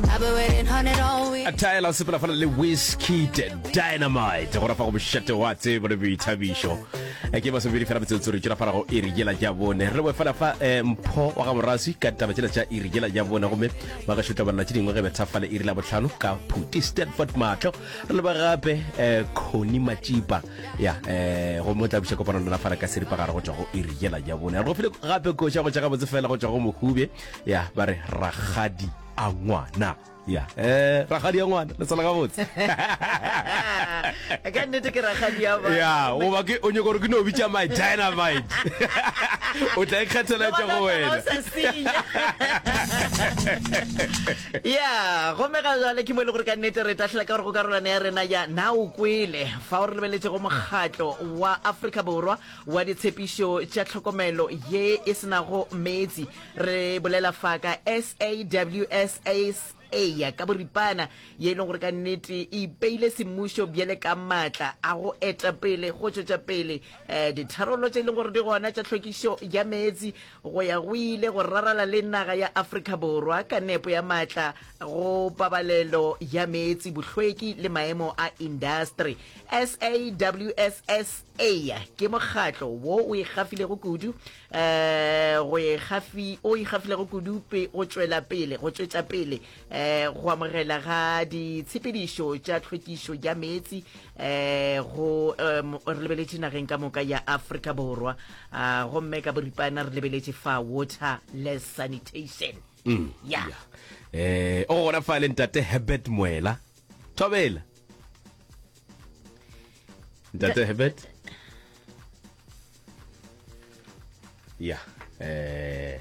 I've been waiting on it all week. a taela o sepela fana le whisky dynamite go rafa go bošate wa tsebo le boithabišo Eh, ke masomedi fela metsotso re tšwela fara go iri jela ja bone re boe fela fa eh, mpho wa ga morasi ka taba tšela tša iri jela ja bone gomme ba ka šutla banna tše dingwe ge bethafale iri la botlhano ka phuti stanford matlho re leba gape eh, coni matšipa ya eh, gomme o tla buša kopano lona fara ka seripa gare go tšwa go iri jela ja bone re go file gape koša go tša gabotse fela go tšwa go mohube ya ba re ragadi a ngwana ya eh ragadi ya ngwana le tsala gabotse ka nnete ke ragadi ya ba ya goba ke o nyaka gore ke no bitša my dynamite o tla ikgethela tša go wena ya gomme ga jale ke mo e le gore ka nnete re tahlela ka gore go karolwane ya rena ya na o kwele fa o re lebeletse go mokgatlo wa afrika borwa wa ditshepišo tša tlhokomelo ye e senago meetse Re bolela fa ka SAWSA ka boripana, ye e lego gore ka nnete e ipeile semmušo bjale ka maatla a go eta pele go tšwetša pele um ditharollo tše e leng gore di gona tša tlhwekišo ya meetse go ya go ile go rarala le naga ya Afrika Borwa ka nepo ya maatla go pabalelo ya meetse, bohlweki le maemo a indastri. SAWSA ke mokgatlo wo o ikgafilego kudu um go ikgafi o ikgafilego kudupe go tšwela pele go tšwetša pele um go amogela ga ditshepedišo tša tlhwekišo ya meetse um go um re lebeletše nageng ka moka ya afrika borwa um gomme ka boripana re lebeletše fa water less sanitation mm. ya um o gona fa le ntate herbert moela thobela ntate herbert ya eh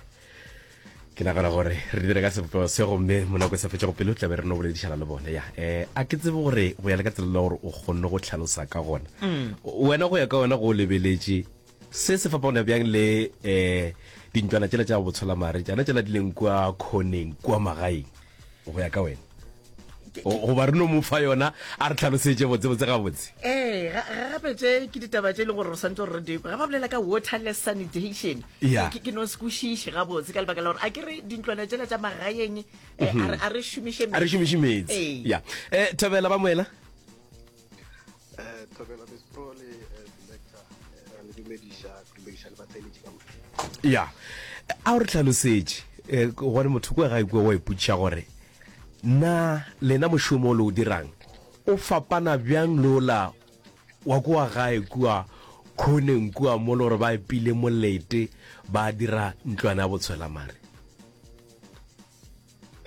ke nagana gore re dire ka sebopego se gomme monako e sa fetsa go pele o tlabe re no boledišana le bone ya um a ke tsebe gore go ya le ka tsela la gore o kgonne go tlhalosa ka gona mm. wena go ya ka wena go o lebeletše se se fapagona bjang le um dintwana tsela tša botsholamare tsana tsela di leng kua khoneng kua magaeng go ya ka wena goba re no mo fa yona a re tlhalosetse botsebotse gabotse ee ga gape tse ke ditaba tse e leng gore re santse gore re di ga ba bolela ka waterless sanitation ke no se kwešiše gabotse ka lebaka la gore a ke re dintlwana tsela tsa magaeng e, mhm. a re šomiše metsi ya um thabela ba moela Eh, Thobela Miss Pro le eh, Selector eh, ra le dumediša ke dumediša le batheletši ka moka. ya a o re tlhalosetše eh, gone motho kwe ga ikwe wa ipotšiša gore na lena mošomo o le o dirang o fapana bjang le ola wa kua gae kua khoneng kua mo le gore ba epile molete ba dira ntlwana ya botshwelamare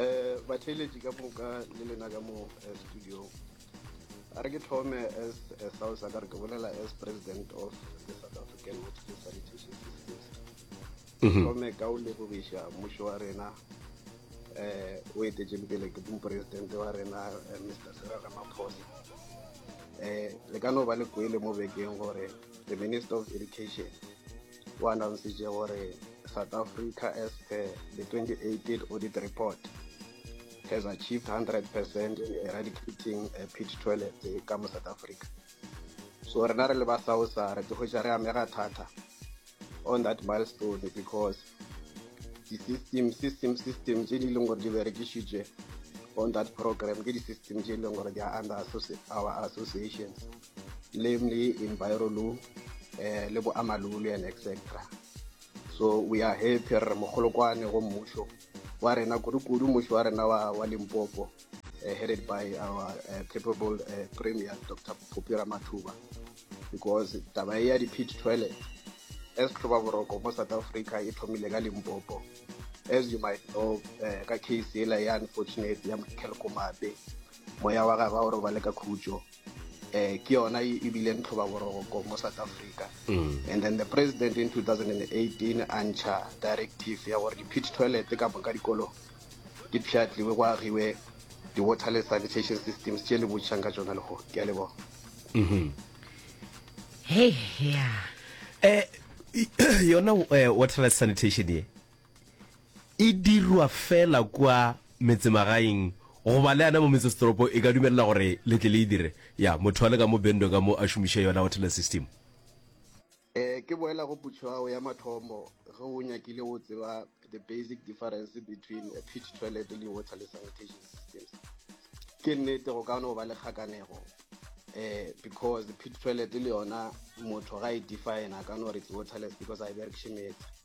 Eh, batheeletši ka moka le lena ka mo eh, studio a re ke thome as a south a ka re ke bolela as president of the south african hospital sanitation systems mhm. thome ka o lebogiša mmušo wa rena eh o etetseng pele ke moporesidente wa rena eh, mr sera ramaphosa eh le ka no ba le kwele mo bekeng gore the minister of education o annountsitše gore south africa as per the 2018 audit report has achieved 100 percent in eradicating a pit toilet ka mo south africa so rena re le ba sausa re tlogetša re amega thata on that milestone because di-system system system tše di leng gore di berekišitše on that program ke di-system tše e leng gore di are under our associations namely enviro law eh, le boamalole and etc so we are happy re mogolokwane go mmušo wa rena kudu-kudu mmušo wa rena wa, wa limpopo uh, headed by our uh, capable uh, premier dr popira mathuba because taba e ya di-pit toilet as tlhoba boroko mo south africa e thomile ka limpopo as you might know uh, ka case ela ya unfortunate ya mothelkomape moya wa gagwe o robale ka khutso eh ke yona e e bileng tlhobaboroko mo south africa mm. and then the president in 2018 a ntšha directive ya gore di-pit toilet ka moka dikolong di pšhatliwe go agiwe di-water le sanitation systems tše le botšhang ka tsona lego ke a leboga mm-hmm. hey, yeah. eh, yona eh, water le sanitation ye E dirwa fela kua metsemagaeng goba le yana mo metsesetoropo e ka dumelela gore le tle le e dire. Ya, motho a le ka mo Bendwe ka mo a šomiše yona hotel system. Ee, ke boela go putšo ya gago ya mathomo ge o nyakile go tseba the basic difference between a pit toilet le water le sanitation systems. Ke nnete go ka no ba le kgakanego um because pit toilet le yona motho ga e define-a a ka no re it's waterless because ga e berekiše meetse.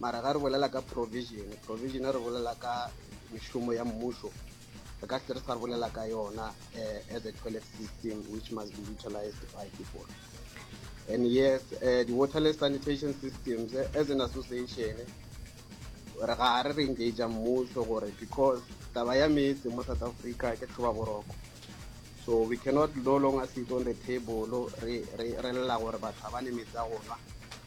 mara ga re bolela ka provision provision re bolela ka mešomo ya mmušo re ka se re sa bolela ka yona uh, as a toilet system which must be utilized by people and yes uh, the waterless sanitation systems uh, as an association re ga re re engage mmušo gore because taba ya metse mo south africa ke tlhoba boroko so we cannot no longer sit on the table re lela gore batho ga ba ne metse a gona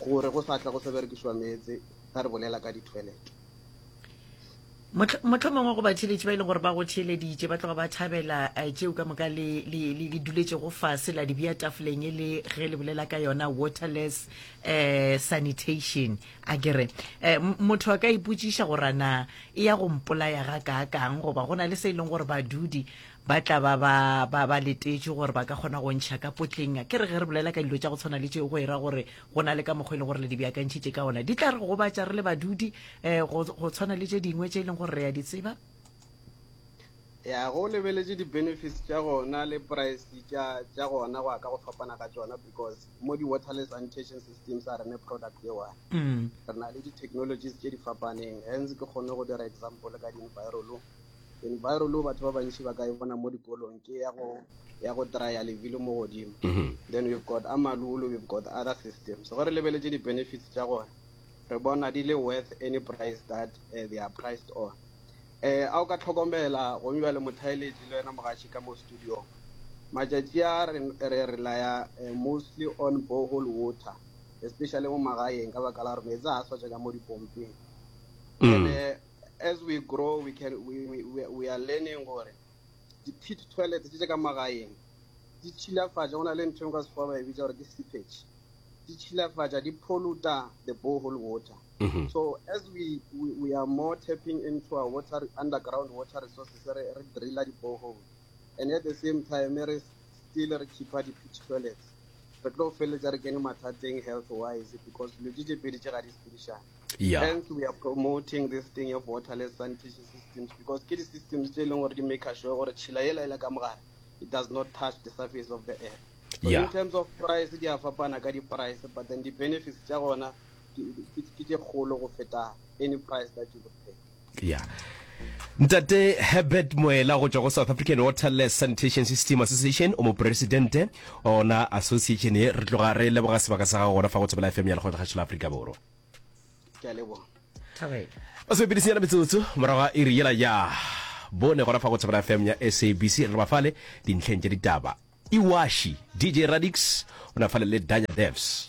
Gore go sa tla go sa berekišwa meetse ge re bolela ka dithoelete. Mohlomongwe go batheeletši ba e leng gore ba go theeleditše ba tloga ba thabela eh, tšeo ka moka le duletšego fase la dibea tafoleng e le ge le bolela ka yona waterless um sanitation a kere um motho a ka ipotšiša gorana e ya go mpolaya ga kaakang goba go na le se e leng gore badudi ba tla ba ba ba ba letetše gore ba ka kgona go ntšha ka potleng ke re ge re bolela ka dilo tša go tshwana le tšeo go era gore go na le ka mokgwa e leng gore le di beakantšhitše ka ona di tla re gobatša re le badudi um go tshwana le tše dingwe tše e leng gore re ya di tseba ya go lebeletše di-benefits tša gona le price tša gona go ya ka go fapana ga tšona because mo di-waterless sanitation systems a rene product e one mm. re na le di-technologies tše di fapaneng hence ke kgone go dira example ka di-envirolo environment batho ba bantši ba ka e bona mo dikolong ke ya go ya go trya lebilo mo godimo mhm. then we've got amalulu we've got other systems gore lebeletse di-benefits tša gona re bona di le worth any price that uh, they are priced on eh a o ka tlhokomela gome bjale mothaeletši le wena mogatši ka mo studio matšatši a re re laya eh, mostly on bohole water especially mo magaeng ka baka la gore meetse a swatša ka mo dipompeng mm. ene As we grow we can we we we, we are learning gore di pit toilet tse ka magaeng di tshilafatša go na le ntho e ka sekgowa ba e bitsa gore ke seepage di tshilafatša di polluta the borehole water mm -hmm. so as we, we we are more tapping into our water underground water resources re re drilla di borehole and at the same time re still re khipha di pit toilets re tlo feleletsa re kene mathateng health wise because dilo tse tse pedi tse ga di sepedišane yeah. hence we are promoting this thing of waterless sanitation systems because ke di-systems tse e leng gore di make sure gore tšhila e laela ka mogare it does not touch the surface of the earth so yeah. in terms of price di a fapana ka di-price but then di-benefits tša gona ke tše kgolo go feta any price that you would pay Ya. Ntate Herbert Moela go tšwa go South African Waterless Sanitation System Association o mopresidente wa ona association ye. Re tloga re leboga sebaka sa gago gona fa go Thobela FM ya Lekgotla Kgašo la Afrika Borwa. Ke a leboga. Thabela. Ba se bepedi senyana metsotso morago ga iri yela ya bone gona fa go Thobela FM ya SABC re ba fale dintlheng tša ditaba. Iwashi DJ Radix o na fale le Danya Devs.